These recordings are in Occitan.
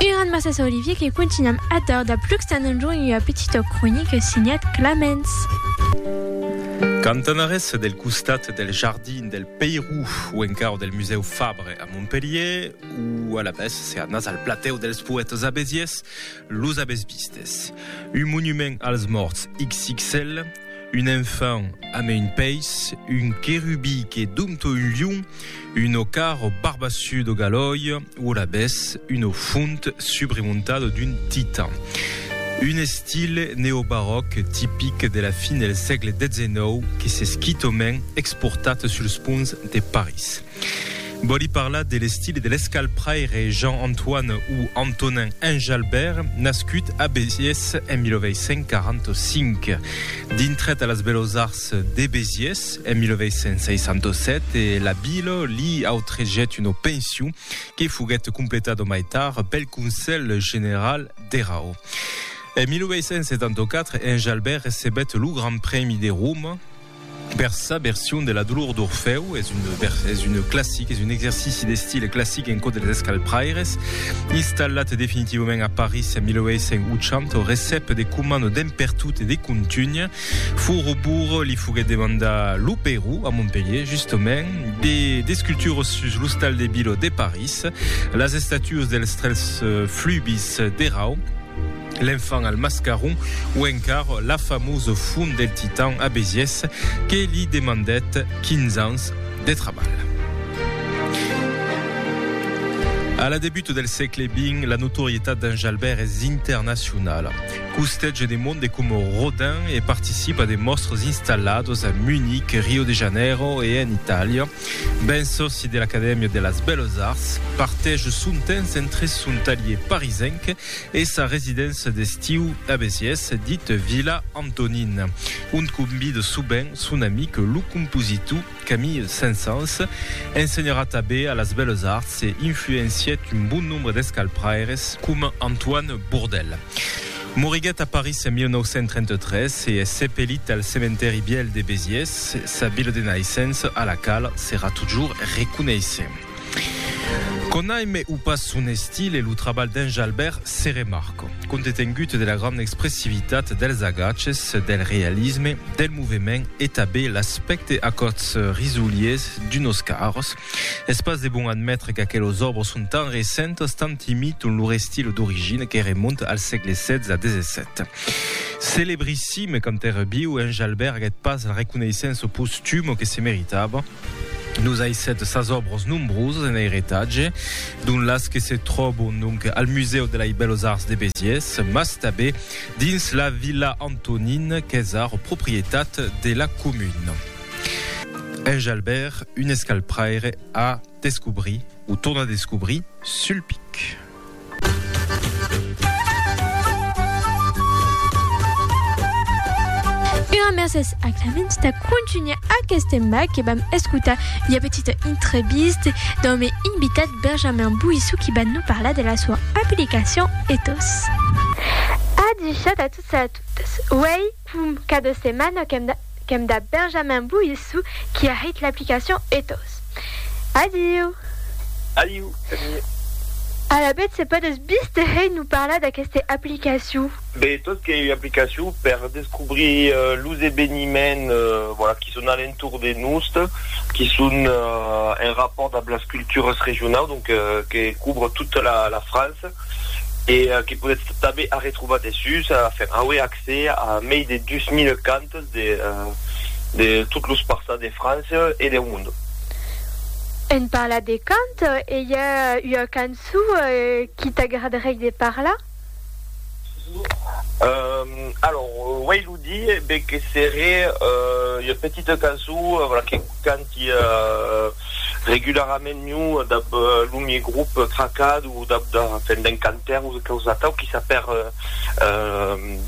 Eran Massas Olivier que contunham atar dab Luxtan en jorn ua petita cronica signat Clamens. Cantanarés del costat del jardin del Peirou o encara del musèu Fabre a Montpelhier o alavetz se anatz al platèu dels poètes abesiers los avètz vistes. Un monument als mòrts xxl. Un enfant a me un peis, un querubi que dompto un lion, un ocar o barbassu do galòi o alabès una font subremontada d'un titan. Un estil neobaròc tipic de la fin del sègle 19 que s'es quitament exportat suls ponts de París. Vòli parlar de l'estil e de l'escalpraire Jean-Antoine o Antonin Enjalbert, nascut a Besiés en 1845. Dintrat a las Bellos Arts de Besiés en 1867 e la vila li autregèt una pension que foguèt completada mai tard pel Conselh General dera o. En 1874, Enjalbert recebèt lo Grand Prèmi de Roma, Per sa version de la dolor d'Orfèu, es un vers, es un classic, es un exercici d'estil classic en cò dels escalpraires. Installat definitivament a París en 1880, recep de coman d'en pertot e de contunh. Furubur li foguèt demandar lo Perú, a Montpelhier justament, de d'esculturas sus l'ostal de Biló de París, las estatuas dels tres flubis d'Erau, L'enfant al mascaron o encar la famós font del Titan a Besiès que li demandèt 15 ans de trabalh. A la debut del sègle xx, la notorietat d'en Jalbèrt es internacionala. Costètge de monde coma Rodin e participa de mòstres installados a Munic, Rio de Janeiro e en Itàlia. Ben sòci de l'Acadèmia de las Belles Arts, partège son temps entre son talhier parisenc e sa residéncia d'estiu a Besiés, dit Vila Antonin, ont convide sovent son amic lo compositor Camille Saint-Saëns. Ensenharà tanben a las Bèlas Arts e influencièt un bon nombre d'escalpraires coma Antoine Bourdelle. Moriguèt a París en 1933 e es sepelit al Cementèri Vièlh de Besiés, sa vila de naissença a la quala serà totjorn reconeissent. Conaime o pas son estil e lo trabalh d'en Jalbèrt se remarca. Compte tengut de la granda expressivitat dels agaches, del realisme, del movement e tabé l'aspècte acòts risoliers d'unos carros, es pas de bon admetre qu'aquelos òbres son tan recentas, tant imiton lor estil d'origina que remonta al sègle XVI-XVII. Celebrissime quand èra viu, en Jalbèrt aguèt pas la reconeissença postuma que se meritava. Nos aissèt sas òbros nombrosas en airetatge, dont las que se tròbon donc al Musèu de lei Bèlos Arts de Besiés, mas tabé dins la Vila Antonin qu'es ara proprietat de la comuna. Enjalbèr un escalpraire a descobrir, o tornar a descobrir, sul pic. Una mercés a Clemens de contunhar aquest tema que vam escutar i a petita entrevista del meu invitat Benjamin Bouissou qui va nous parlar de la sua aplicacion Ethos. A 17 a tots e a totes. Uèi, Pum, qu'a de setmana qu'èm dab Benjamin Boissou qui a hèit l'aplicacion Ethos. Adiu! Adiu, Camille. Alavetz se pòdes bis te hèit nous parlar d'aqueste aplicacion? Be, Ethos qu'ei ua aplicacion per descobrir los eveniments voilà, qui son a l'entorn de nos, qui son en rapòrt dab las cultures regionaus, donc que couvre tota la France e que podetz tanben arretrobar dessús, enfin, auer accès. Se a mei de 2000 cantes de de tot los parças de França e deu monde. En parlat de cant, e i a ua canço qui t'agradarei de parlar? Alors, uei lo di, be que seré ua petita canço, vola, que canta. Qui a regularament miu dab lo mie grup tracat o dab da fèn d'un cantaire o quausa atau qui sap hèr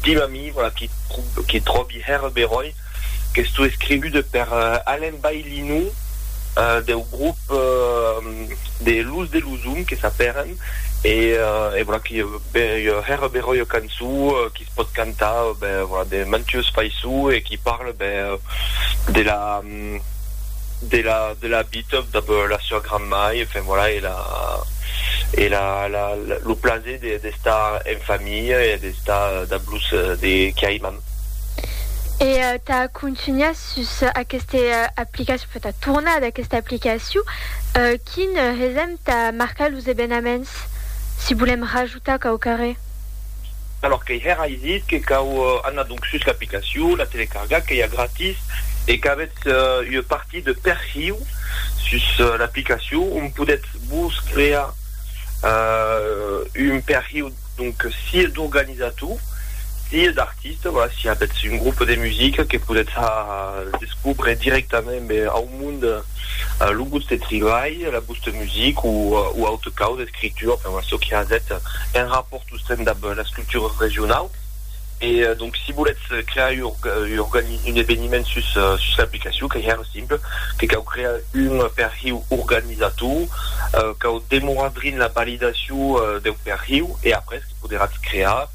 dim a mi, voilà, qui qui tròbi hèr beròi qu'estó escrivude per Alain Baillinou deu grup de Luz de Luzum que sap hèren e e voilà qui hèr beròi ua cançó qui se pòt cantar, ben, voilà, de mantues faisçó e qui parle, ben, de la. de la de la vita dab la sua granmai, enfin voilà e la e la la lo plaser de d'estar en familha e d'estar dab los de qui aimam. E tà contunhar sus aqueste aplicacion, enfin tà tornar ad aquesta aplicacion, quin hesèm tà marcar los evenaments si volèm rajutar quauquarré? Alòr qu'ei hèr ai dit que cau anar donc sus l'aplicacion, la telecargar, qu'ei a gratis e qu'avètz ua partir de perhiu sus l'aplicacion ont podètz vos crear un perhiu donc sié d'organizator sié d'artista. artiste voilà si avètz un groupe de musica que podètz descobre directament ben au monde lo vòste tribalh la vòste music o o aute causa escritura enfin voilà çò que avètz un rapport sosten dab las cultures regionau e donc si volètz crear un eveniment sus sus l'aplicacion qu'ei hèr simple que cau crear un perhiu organizator cau demorar drin la validacion deu perhiu e après poderatz crear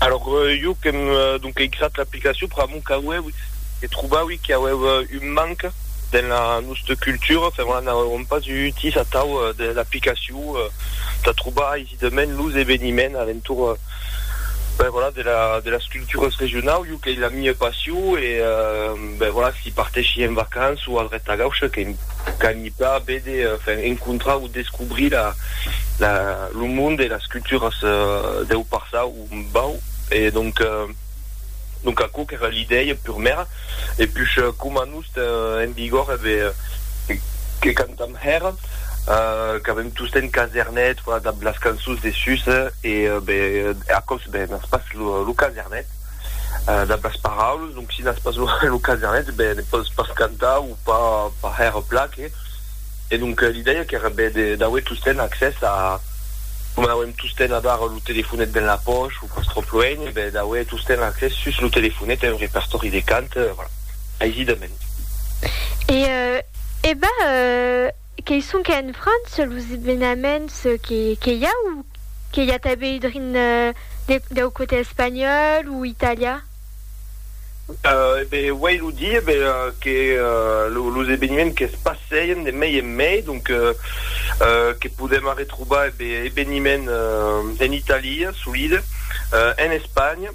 Alors jo qu'èm donc eisat l'aplicacion per amor qu'auèu se trobaui qu'auèu un manc dens la nosta cultura, enfin voilà, n'auèuem pas eu utís atau de l'aplicacion de trobar aisidament los eveniments a l'entorn, ben voilà, de la de las culturas regionaus, jo qu'ei la mia passion e ben voilà, si partèschi en vacança o a dreta gaucha, qu'ei qu'ei D'a béder, enfin, encontrar o descobrir la, la, lo monde e las culturas deu passau, o bau, e donc, donc aquò qu'èra l'idèia purmèra, e push coma nos ten en vigor e be, que cantam hèra, qu'avem tostemp casernet, voilà, dab las cançons de sus, e be, aquò's be, n'as pas lo, lo casernet. Dab las paraules, donc si n'as pas lo casenet, ben ne pòs pas cantar o pas hèr plaque. E donc li dèia qu'èra ben d'auer tosten accès a, coma n'auem tosten avar lo telefonet dens la pòch o pas tròp luenh, ben d'auer tosten accès sus lo telefonet a un repertòri de cant, voilà, aisidament. E, e ben, Qué sonque en França los evenaments que i a o que i a tanben drin deu cote espanhòl o italian? E ben uèi lo di e ben que los eveniments que's passeien de mei en mei donc que podèm arretrobar e ben eveniment en Italia solide en Espanha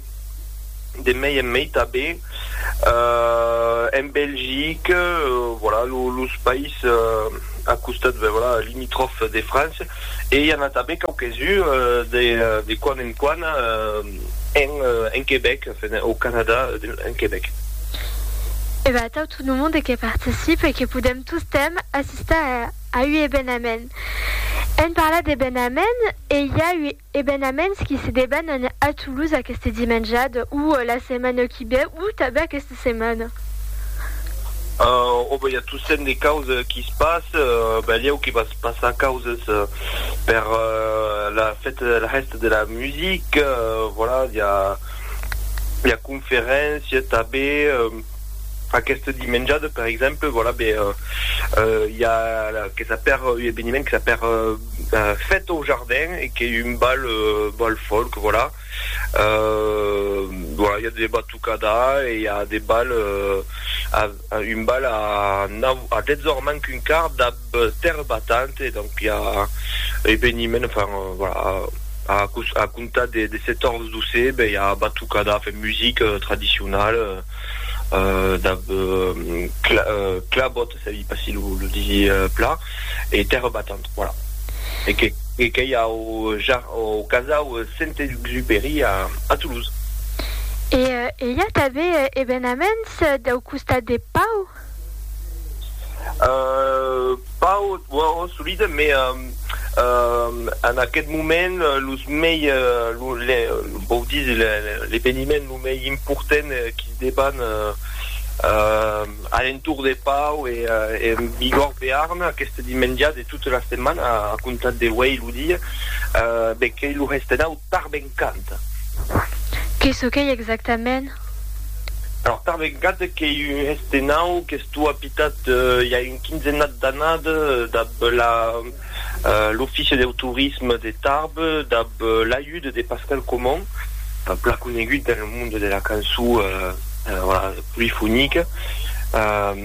de mei en mei tanben. en Belgique, voilà, los país a costat, ben voilà, limitròf de França, e i a n'a tanben quauques-uns de quan en quan en Quebec, enfin, au Canada, en Quebec. E ben atau tot lo monde que participe e que podèm tostemp assistar a ua evenament. Èm parlat d'evenament e i a ua. Ebenaments qui se debanan a Toulouse aqueste dimenjad o la setmana qui ve o tanben aqueste setmana. Ò ben i a tossent de causes qui se passe, balhèu que va se passar causes per la fête de la hèsta de la musique, voilà, i a conferéncia tanben. Aqueste dimenjade, per exemple, voilà, be, euh, i a que s'a per un eveniment que s'a per fête au jardin e qu'ei un bal, bal folk, voilà. Euh, voilà, i a de batucada e i a de bal, euh, un bal a nau, a 10 ors manc un quart dab. Terre battante, donc i a eveniment, enfin voilà, a a comptar de de 14 d'ausè ben i a batucada, enfin musique tradicionale, euh dab cla clabòt, se i pas si lo lo disi plan, e terre battante, voilà. E que e qu'ei au ja au casau Saint-Exupéry a a Toulouse. E i a tanben evenaments dau costat de Pau? Pas ò solide, mai en aqueth moment los mei, vòu díser l'eveniment lo mei important qu'i deban a l'entorn de Pau e en Bigòrd Bearn aqueste dimenja de tota la setmana a comptar de uei lo dia, ben qu'ei lo Hestenau Tarbencant. Qué çò qu'ei exactament? Alors tà vegada qu'ei un hèste nau qu'estó apitat i a un quinzenat d'anada dab la l'Offici deu Torisme de Tarbes dab l'ajuda de Pascal Comon, plan conegut dans le monde de la cançó polifonica,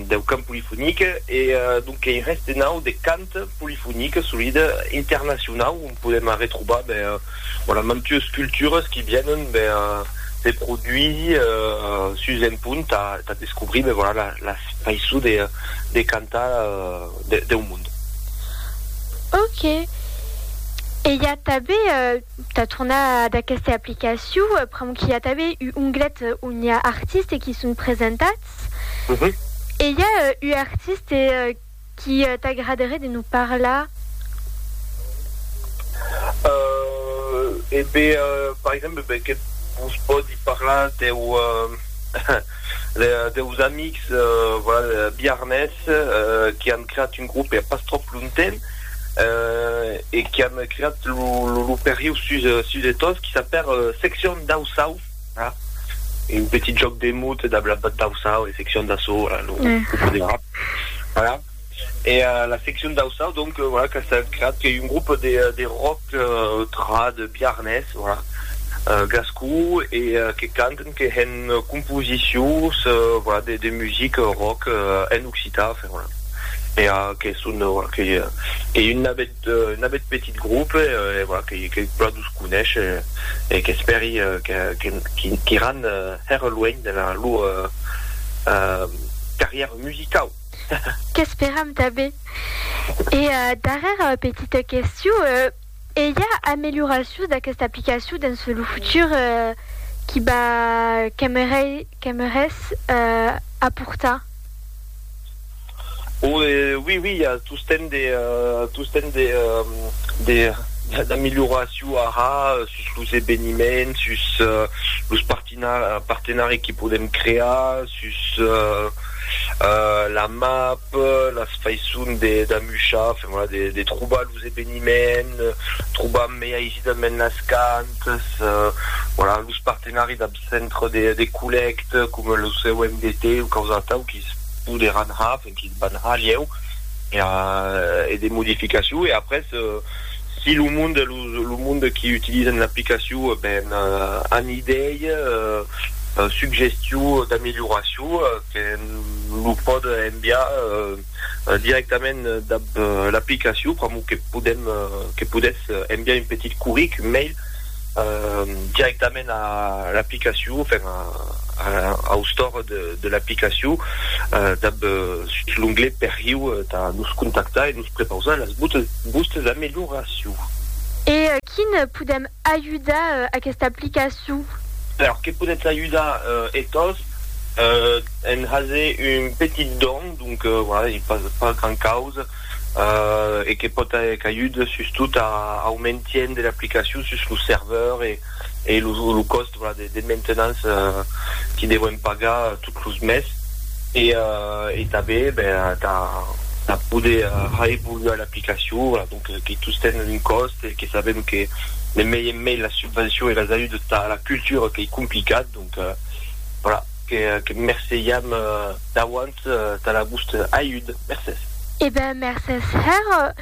deu cant polifonic, e donc qu'ei un hèste nau de cant polifonic, solida, internacionau, on podem arretrobar ben Bon, a mantues cultures qui vienen ben, se produisi sus un punt tà tà descobrir ben voilà la la faiçon de de cantar de deu monde. Ok. E i a tanben, tà tornar ad aquesta aplicacion, pr'amor qu'i a tanben u onglet on i a artistes qui son presentats. E i a u artiste Qu'i t'agraderé de nous parlar? Euh, e be, par exemple, be que vos pòdi parlar deu, deus amics, voilà, biarnés, qui an creat un groupe a pas tròp lontemps, e qui an creat lo, lo, lo perriu sus, sus de Tos, qui s'apèr Section Dau Sau. un petit jòc de mot e d'auçau, e seccion d'assaut, voilà, lo poderà, voilà, e la seccion d'auçau, donc, voilà, qu'a estat creat, qu'ei un grop de rock trad biarnés, voilà, gascon, e que canten, que hèn composicions, voilà, de music rock en occitan, enfin, voilà, e que son, voilà, qu'ei un navèth. N'abet petit groupe e voilà que plan dus conesh e qu'espèri qu'iran hèr luènh dena lor carrièra musicau. Qu'esperam tanben. E darrèra petita questiu, e i a amelioracions d'aquesta aplicacion dens lo futur qui va qu'aimerais aportar? O e oui oui i a tostemp de tostemp de de d'amilhoraciu ara sus los eveniments sus los partina partenari que podem crear sus la map las faisson de d'amuchar enfin voilà de de trobar los eveniments trobar mai aisidament las cantas voilà los partenari centre de de collècte coma lo COMDT o quaus atau quis poderàn har e quis van har lhèu e a e de modificacion e après si lo monde lo lo monde qui utilisen l'aplicacion ben an idei suggestion d'amélioracion que lo pòde enviar directament dab l'aplicacion pr'amor que podem que podètz enviar un petit curric, un mail, directament a l'aplicacion, enfin au store de l'aplicacion dab sus l'onglet perriu tà nos contactar e nos prepausar las vòstes amelioracions. E quin podem ajudar aquesta aplicacion? Alors, que podètz ajudar e-tòs en haser un petit don. Donc, voilà, ei pas gran causa e que pòt aer cagut sustot au maintien de l'aplicacion sus lo serveur e lo còst de maintenance que devèm pagar tot los mes e tanben tà poder reevoluar l'aplicacion, voilà, donc que tostemp un còst e que sabèm que ne mei en mei las subvencions e las ajudas tà la cultura qu'ei complicat. Donc, voilà, que merceiam d'auant tà la vòste ajud. Mercés. E ben, mercés, hèr.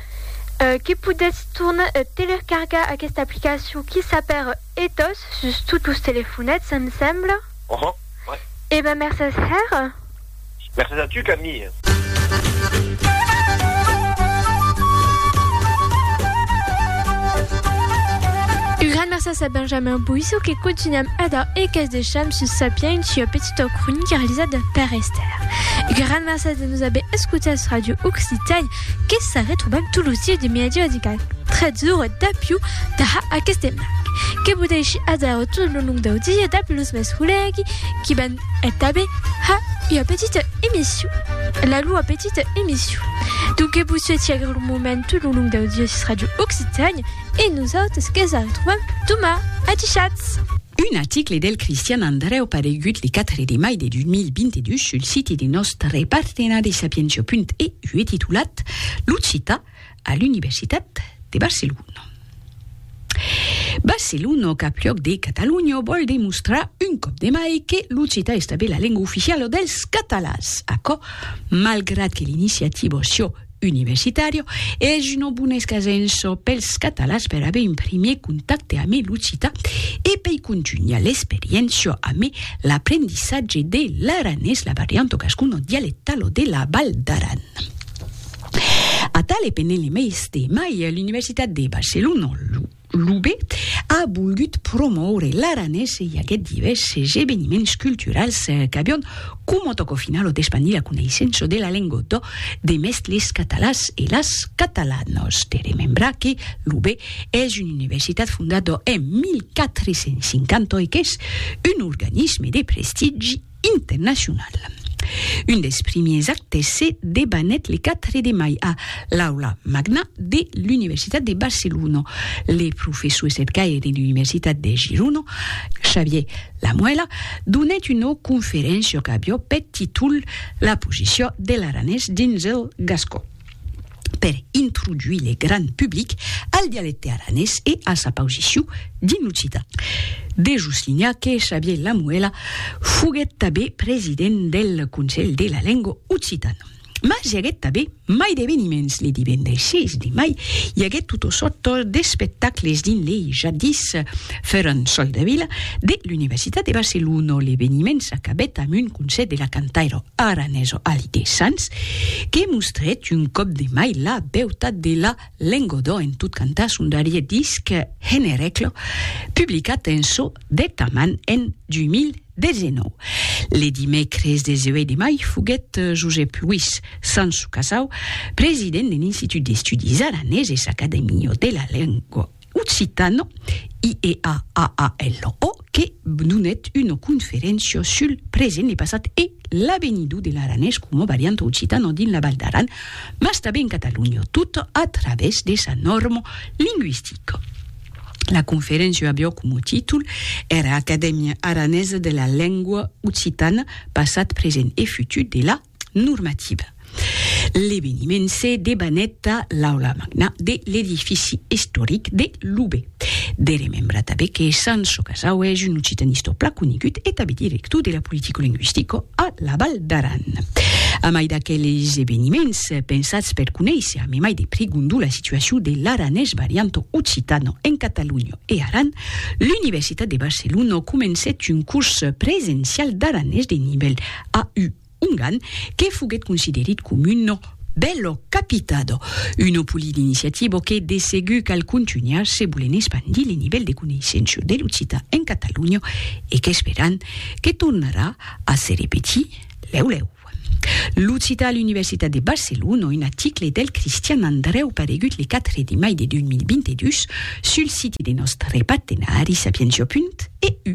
Que podètz tornar telercargar aquesta aplicacion qui s'apèr ethos sus tots los telefonets, em sembla. Uhum, ouais. E ben, mercés, hèr. Mercés a tu, Camille. Un gran mercés a Benjamin Boisseau que cotinam ada e qu'es decham sus Sapiens ua petita cronica realizada per Esther. Un gran mercés de nos aver escotats Radio Occitània que sa retrobam tot los dies de mediadic a 13 ora d'apiu tà aqueste marc. Que vos dèishi adèra tot lo long dau dia dab los mes collègues qui van E tanben ha ua petita emission, la lua petita emission. Donc que vos suetz agre lo moment tout lo long dau Diòsis Radio Occitània e nosautres que's arretrobam doma. Atichatz! Un article del Cristian Andrèu paregut le 4 de mai de 2022 sul siti de nòstre partenari Sapientia.eu e titulat L'occitan a l'Universitat de Barcelona. Barcelona, capluòc de Catalonha, vòl demostrar un còp de mai que l'occitan es tanben la lenga oficiala dels catalans. Aquò, malgrat que l'iniciativa Sio Universitario es una bona escasença pels catalans per aver un primièr contacte amé l'occitan e pei contunhar l'experiéncia amé l'aprendissatge de l'aranés, la varianta gascona dialectala de la Val d'Aran. Atal e pendent li meis temai, l'Universitat de Barcelona, l'UB, a volgut promoure l'aranés e i aguèt divèrses eveniments culturals qu'avián coma tòca finalo d'espandir la coneissença de la lengua d'ò de mès les catalans e las catalanas. De remembrar que l'UB es una universitat fondada en 1450 e qu'es un organisme de prestigi internacional. Un dels primiers actes se debanèt le 4 de mai a l'Aula Magna de l'Universitat de Barcelona. Le professor estretgaire de l'Universitat de Girona, Xavier Lamuela, donèt una conferéncia qu'avió peth títol La posició de l'aranés dins el gascon. per introduir le gran public al dialecte aranés e a sa pausiciu dins l'occitan. De soslinhar que Xavier Lamuela foguèt tabé president del Conselh de la Lengua Occitana. Mas i aguèt tabé mai d'eveniments, le divendres 6 de mai i aguèt tot o sòrt d'espectacles dins le jadis, Ferran Soldevila, de l'Universitat de Barcelona, l'eveniment s'acabèt amb un concèrt de la cantaira aranesa Alide Sans, que mostrèt un còp de mai la beutat de la lengodò en tot cantar son darrier disc Henereclo, publicat en çò de ta man en 2019. Le dimècres 18 de mai foguèt Josep Luís Sans Casau, president de l'Institut d'Estudis Araneses Acadèmia de la Lengua, Occitano, IEAAALO, que donèt una conferéncia sul present, le passat e l'avenidur de l'aranés coma varianta occitana dins la Val d'Aran, mas tanben en Catalonha, tot a travèrs de sa nòrma lingüistica. La conferéncia aviá coma títol era Acadèmia aranesa de la lengua occitana, passat, present e futur de la normativa. L'eveniment se debanèt a l'aula magna de l'edifici istoric de Loubet. De remembrar tanben que Sanço Casau es un occitanistor plan conegut e tanben director de la politicolinguistica a la Val d'Aran. A mai d'aqueles eveniments pensats per conéisser a memai de prigondu la situacion de l'aranés varianto occitano en Catalonha e Aran, l'Universitat de Barcelona comencèt un curs presencial d'aranés de nivèl A u ongan que foguet considerit com uno bello capitado, uno poli d'iniciativo que de segur cal contunhar se volen espandir le nivèl de coneissenço de l'occitan en Catalonha e qu'esperan que tornarà a se repetir lèu lèu. L'occitan a l'Universitat de Barcelona, un aticle del Cristian Andrèu paregut le 4 de mai de 2022 sul siti de nòstre partenari Sapientia. EU.